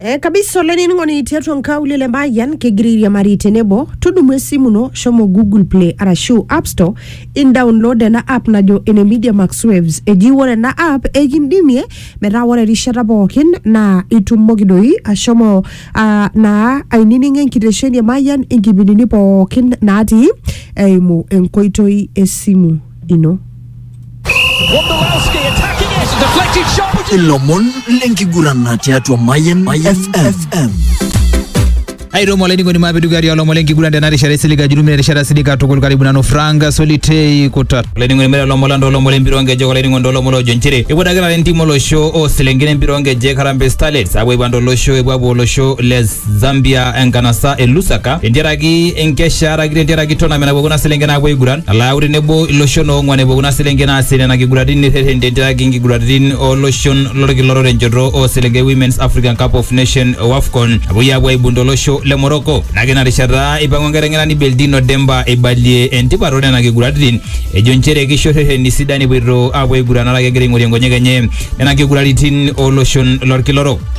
Eh, kabisa olainining'oni tiatua nkaulele emayian kegira airiamari tenebo tudumu esimu ino shomo google play arashu app store indownload ena app najo ene media max waves eji ore ena app ekindimie metaa ore erishata pookin naa itumoki doi ashomo ah, naa aininingo enkitesheni emayian inkipindini pookin natii eimu enkoitoi esimu y no. ilomon lenkiguran tiatua Mayan FM. airemo olainining'oni maapidugari olomon lenkiguran tena rishata isilig ajurumina erishata silig katukul karibu nanu frank solitei kutat olainining'oni mere olomon lando olomon lempira onkejek olainining'oni olomon ojo nchere eiputakita entiim olosho oo selenken empira onkejek Harambee Starlets apuo aipang tolosho epuo apuo olosho le Zambia enkanasa e Lusaka tentiaraki enkesha araki tentiaraki tournament napuo kuna selenken aapuo aiguran nalo ayau tenebo iloshon oong'uan epuo kuna selenken aasie nena kiguraritin nirreten tentiaraki inkiguraritin oloshon lolkila orere enchoto oo selenken e Women's African Cup of Nation o Afcon napuoi aapuo aibung tolosho le Morocco. Nake ina rishata eipang'u enkiteng'enani Beldino Demba eibalie entipat oo nena kiguraritin ejo nchere keisho rreteni sidan epuoito aapuo aiguran araki egira aing'orie nkonyek enye nena kiguraritin oo loshon lolkila orok.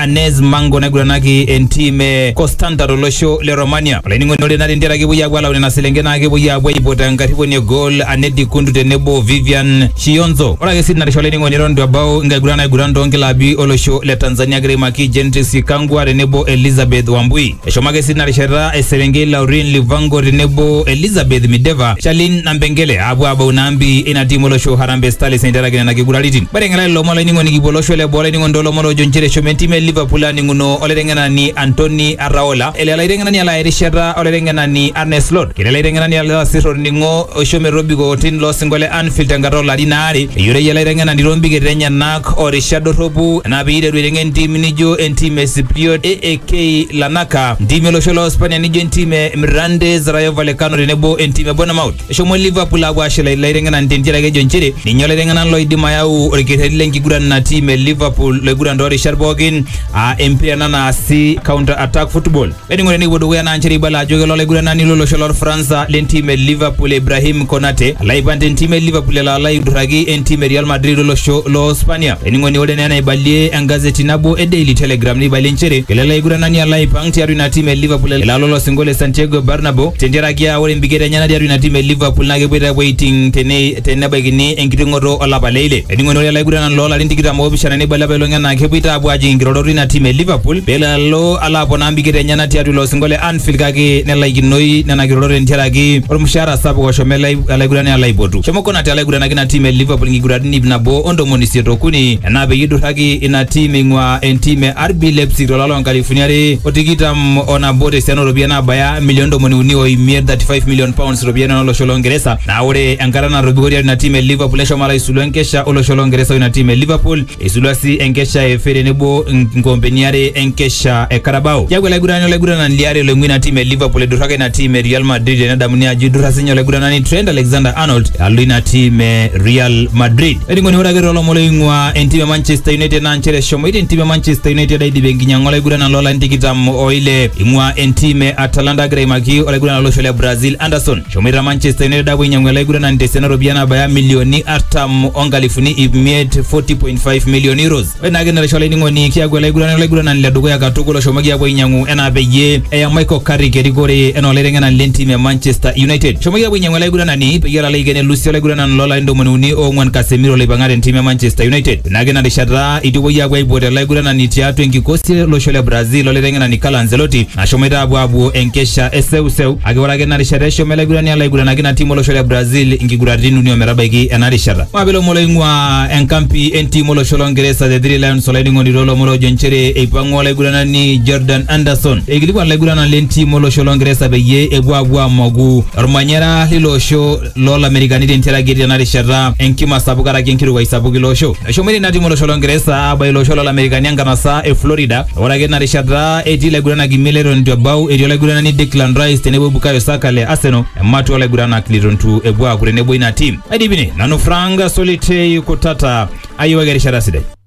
Anez Mango naiguranaki entim e Constanta tolosho le Romania. Olainining'oni ore nare ntiaraki epuoi aapuo alau nena selenken naa kepuoi aapuo aipot enkarriponi e goal Anedi Kundu tenebo o Vivian Shionzo. Ore ake sii tinarisha olainining'oni eton itu ebau nkiguran naiguran toonkilabi olosho le Tanzania egira aimaki Gentrix Ikangwa tenebo Elizabeth Wambui. Eshomo ake sii tina rishata eserenkei Laurin Livango tenebo Elizabeth Mideva, Charlene Nampengele aapuo aabau ina ambi ina tiim olosho Harambee Starlets eiteraki nena kiguraritin. Mateng'ela lelo omon olainining'oni kipuo olosho le boo olainining'oni too lomon oojo nchere eshomo entim e Liverpool aaning'uno olaiteng'enani Antony Arraola, ele olaiteng'enani alo aya erishata olaiteng'enani Arne Slot. Ketii olaiteng'enani alo asir olning'o oisho metobiko otim loo sinko le Anfield tenkata oo larin aare. Eyioloi ele aiteng'enani too mbiketa enyena. orishat dorropu enaa pee iteru aiteng'en entim nijo entim e Sipriot AAK Lanaka, ntimi olosho loo Spania nijo entim e Mirandés Rayo Vallecano tenebo entim e Bournemouth. Eshomo Liverpool aapuo aashula ilaiteng'enak ntiere ake ejo nchere ninye olaiteng'enak loidim ayau orkerreti le nkiguran ina tim e Liverpool loiguran too rishat pookin aa empira ena naasi counter attack football. Eningo tenikipuo dukuya naa nchere ibala ajo kelo olaiguranani lolosho lorfransa lentim e Liverpool Ibrahim Konate alo aipang tentim e Liverpool elo alo aidurraki entim e Real Madrid olosho loo Spania. Ening'oni ore naa enaibalie engazeti nabo e Daily Telegraph neibalie nchere kelo ele aiguranani alo aipang tiatua ina tim e Liverpool elo alo olosinko le Santiago Bernabeu tentiaraki aa ore empiket enyena tiatua ina tim e Liverpool naa kepuoita apuo aiting tene tenebaikini enkiting'oto olapa le ile. Ening'oni ore ele aiguranani loo larin tikitam oopishana neibala apailong enaa kepuoita apuo ajing inkirorot ina tim e Liverpool pelo alo alo aponaa mbikit enyena tiatua ilo osingo le Anfield kake nelaikinoi nena kirorot tentiaraki olmushaara sapuk oshomo ele alaigurani alo aipotu. Shomo Konate alo aigurana ina tim e Liverpool nkiguraritin iip nabo o ntomoni isiet o kuni enaa peyie eiduraki ina tim eing'uaa entim e RB Leipzig to lari loo nkalifuni are o tikitam o nabo te siana oo ropiyiani naabaya milioni ntomoni uni o imiet, thirty five million pounds, iropiyiani oo losho loo Ngeresa. Naa ore enkata natobiko tiatua ina tim e Liverpool neshomo alo aisulu enkesha o losho loo Ngeresa o ina tim e Liverpool. Eisulua sii enkesha e FA tenebo nkoompeni are enkesha e Carabao. Keaku olaigurani olaiguranani liare loing'ua ina tim e Liverpool eiduraka ina tim e Real Madrid tenedamuni ajo eidurra sinye olaiguranani Trent Alexander-Arnold alo ina tim e Real Madrid. Olainining'oni ore ake toolomon oing'ua entim e Manchester United naa nchere eshomoita entim e Manchester United aidip enkinyang'a olaiguranani loolarin tikitam o ile eing'ua entim e Atalanta agira aimaki olaiguranani lolosho le Brazil Anderson. Eshomoita Manchester United apuo ainyiang'u ele aiguranani tesiana ooropiyiani naabaya milioni artam onkalifuni ip miet 40.5 million euros. Ore naake ina rishata olainining'oni kiaku ele aiguranani olaiguranani le dukuya katukul oshomoki apuo ainyiang'u enaa peyie eya Michael Carrick erikore enaa olaiteng'enani le ntim e Manchester United. Eshomoki apuo ainyiang'u ele aiguranani peyie elo aiken elusi olaiguranani loo larin ntomoni uni oong'uan Casemiro loipang'a te ntim e Manchester United. Ore naake ina rishata eitu epuoi apuo aipot ele aiguranani tiatua enkikosi e losho le Brazil olaiteng'enani Carlo Ancelotti Nashomoita apuo apuo enkesha e seuseu kake ore ake ina rishata eshomo ele aigurani alo aiguranaki ina tim olosho le Brazil inkiguraritin uni ometabaiki ena rishata. Maape ilomon loing'ua enkampi entim olosho lo Ngeresa The Three Lions olainining'oni too lomon oojo nchere eipang'ua olaiguranani Jordan Anderson eikilikuan ilaiguranak le ntim olosho lo Ngeresa peyie epuo apuo amoku olmanyara leilo osho loo Lamerikani tentiaraki etii tena rishata enkima sapuk karaki enkirukai sapuk ilo osho. Eshomoita ina tim olosho Longeresa aabaiki ilo osho loo Lamerikani enkanasa e Florida ore ake tina rishata etii laiguranak imiet leton eitu ebau etii olaiguranani Declan Rice tenebo Bukayo Saka le Arsenal ematua oo laiguranak leitu ntu epuo aaku tenebo ina tim. Aidip ine nanu Frank Solitei Kutata ayiewaki erishata sidai.